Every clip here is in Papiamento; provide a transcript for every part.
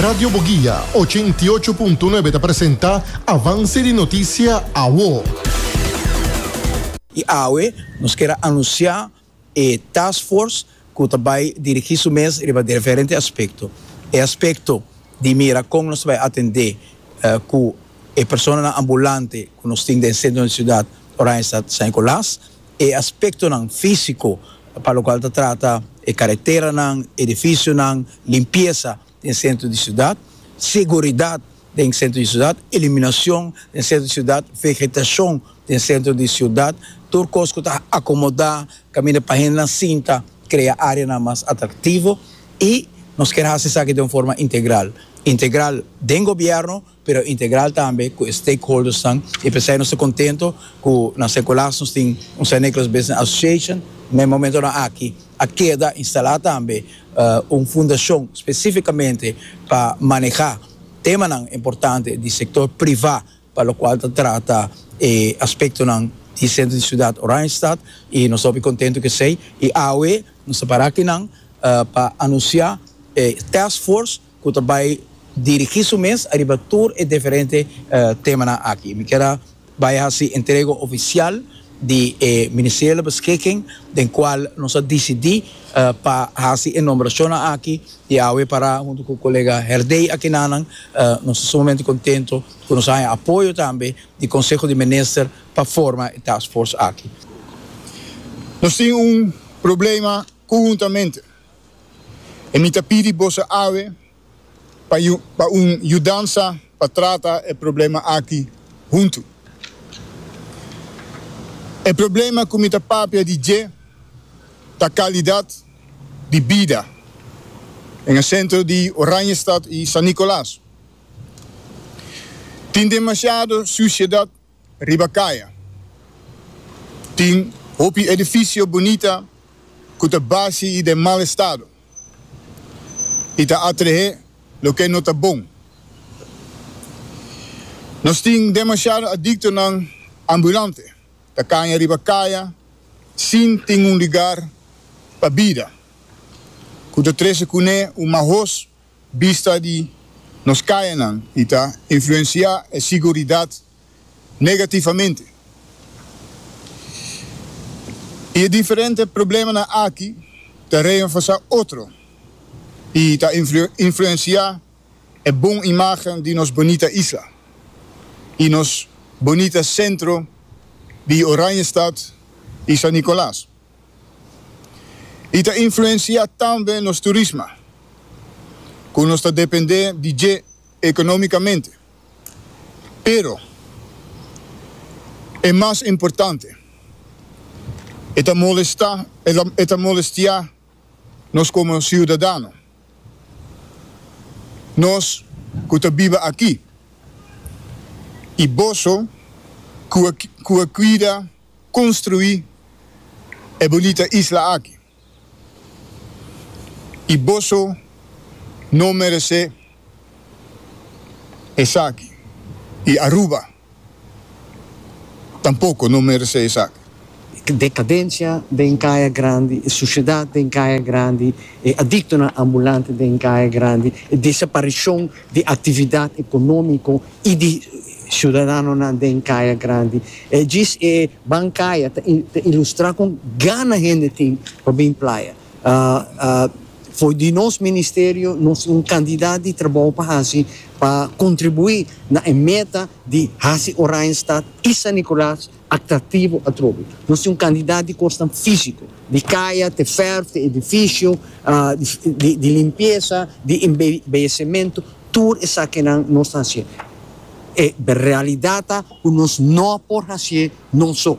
Radio Boguia, ochenta i ocho punto nuebe ta presenta Avance di Noticia Awo. I awe nos kier a anuncia e taskforce cu ta bay dirigi su mes riba diferente aspecto. E aspecto di mira con nos ta bay atende cu e personanan ambulante cu nos tin den centro di ciudad Oranjestad San Nicolas. E aspektonan físiko pa lokual ta trata e kareteranan, edifisionan, limpiesa den sentro di siudat, seguridat den sentro di siudat, eliminashon den sentro di siudat, vegetashon den sentro di siudat, tur kos ku ta akomodá kaminda pa hendenan sinta, krea áreanan mas atraktivo i nos kier hasi esaki den un forma integral, integral den gobièrnu, pero integral tambe cu e stakeholdersnan y pesey nos ta contento cu na Secolas nos tin un Saint Nicholas Business Association, na e momentonan aki a keda instala tambe un fundacion specificamente pa maneha temanan importante di sector priva pa locual ta trata e aspectonan di centro di ciudad Oranjestad y nos ta hopi contento cu esey y awe nos ta para aki nan pa anuncia e taskforce cu ta bay dirigi su mes ariba tur e diferente temanan aki. Mi ker a bay haci entrega oficial di e ministeriele beschikking den cual nos a dicidi pa haci e nombracionnan aki di awe para hunto cu colega Herdey akinanan. Nos ta sumamente contento cu nos a haña apoyo tambe di Conseho di Minister pa forma e task force aki. Nos tin un problema Conhuntamente, e mi ta pidi boso awe pa pa un yudansa pa trata e problema aki huntu. E problema cu mi ta papia di dje ta calidad di bida den e centro di Oranjestad y San Nicolas. Tin demasiado suciedad Riba kaya tin hopi edifisio bunita ku ta basi i den mal estado i ta atrehé loke no ta bon. Nos tin demashado adiktonan ambulante ta kaña riba kaya sin tin un lugar pa bida ku ta trese kuné un mahos Bista di nos kayanan i ta influensiá e siguridat negativamente. I e diferente problemanan aki ta reenforsá otro i ta influensiá e bon imágen di nos bonita isla i nos bonita sentro di Oranjestad i San Nicolas. I ta influensiá tambe nos turisma, ku nos ta dependé di dje ekonómikamente. Pero, e mas importante, e ta molestá, e ta molestiá nos komo siudadano, nos ku ta biba aki i boso ku a kuida. Construi e bunita isla aki y boso no merece esaki y Aruba tampoco no merece esaki. Decadencia den Caya Grandi, e suciedad den Caya Grandi, e adictonan ambulante den Caya Grandi, e desaparicion di actividad economico, y di ciudadanonan den Kaya Grandi. E djis e bankaya ta ta ilustra con gana hende tin pa bin playa. For di nos ministerio nos tin un cantidad di trabou pa haci pa contribui na e meta di haci Oranjestad y San Nicolas atractivo atrobe. Nos tin un cantidad di cosnan fisico, di caya te verf te edificio, di limpieza, di embellecemento, tur esakinan nos ta hacié. E realidad ta cu nos no por hacié noso.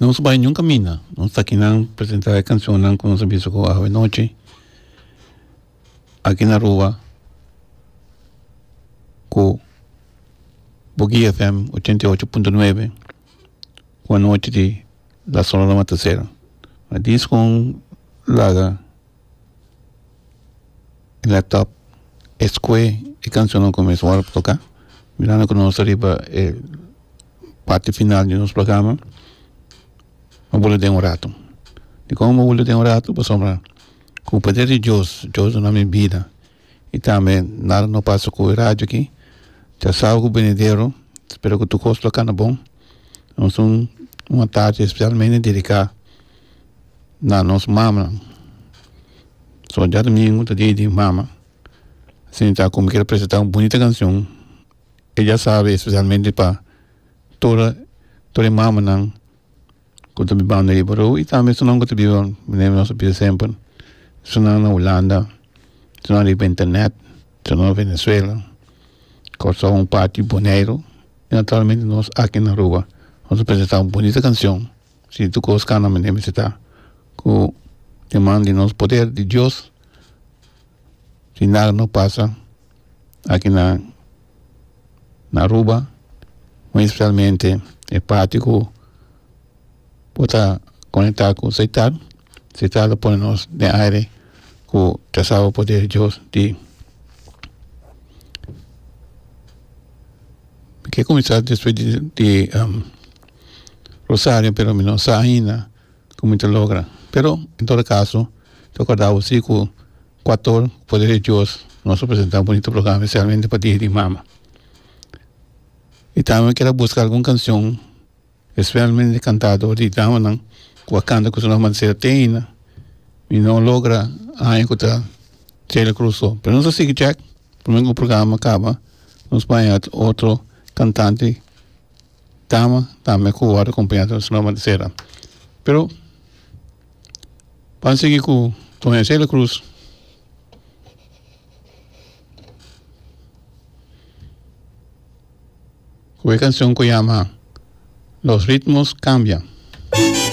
Nos bai niun caminda nos ta aki nan presenta e cancionnan cu nos a bisa cu Ave Noche aki na Aruba cu Boki FM ochenta y ocho punto nuebe cu anochi di la sonora mataser a disco laga. Laptop escoe e cancionnan cu mes wòrdu pa toca mirando cu nos ta riba e parti final di nos programa bo bulu den un ratu dicor bo bulu den un ratu pasobra cu poder di dios dios dona mi bida y tambe nada no pasa cu e radio aki ta sabi venidero spero cu tur cos lo cana bon nos un atachi specialmente dedica. na nos mamanan so dja domingo ta dia di mama sinta como kier presenta un bonita cancion e dja sabe especialmente pa todo todo e mamanan cu ta bibando ahiba roo y tambe esun nan cu ta biba mene nos ta bisa semper esun nan na Hulanda esun nan riba internet esun nan Venezuela Curaçao un parti Boneiru y naturalmente nos aki na Aruba nos ta presenta un bonita cancion. Si tur kos kana mi debe seta ku tin man di nos poder di Dios si nada no pasa aki na na Aruba muy especialmente e parti ku por ta konekta ku seitan seitan lo pone nos den aire ku trazaba poder di Dios di mi ke kuminsá despues di di. Rosario pero mi no sa ainda como mi ta logra pero en todo caso ta corda bo si cu cuator poder di dios nos a presenta un bonito programa specialmente pa dia di mama y tambe kier a busca algun cancion specialmente cantador di damanan cu a canta cu su nomber a ser te aina mi no logra aña cu ta Celia Cruz so pero nos a sigui cab pur me cu programa a caba nos bai otro cantante Dama tambe ku wòrdu kompañá ta su nòmber Gisela, pero pan sigui ku Doña Celia Cruz ku e kanshon ku yama Los ritmos cambian.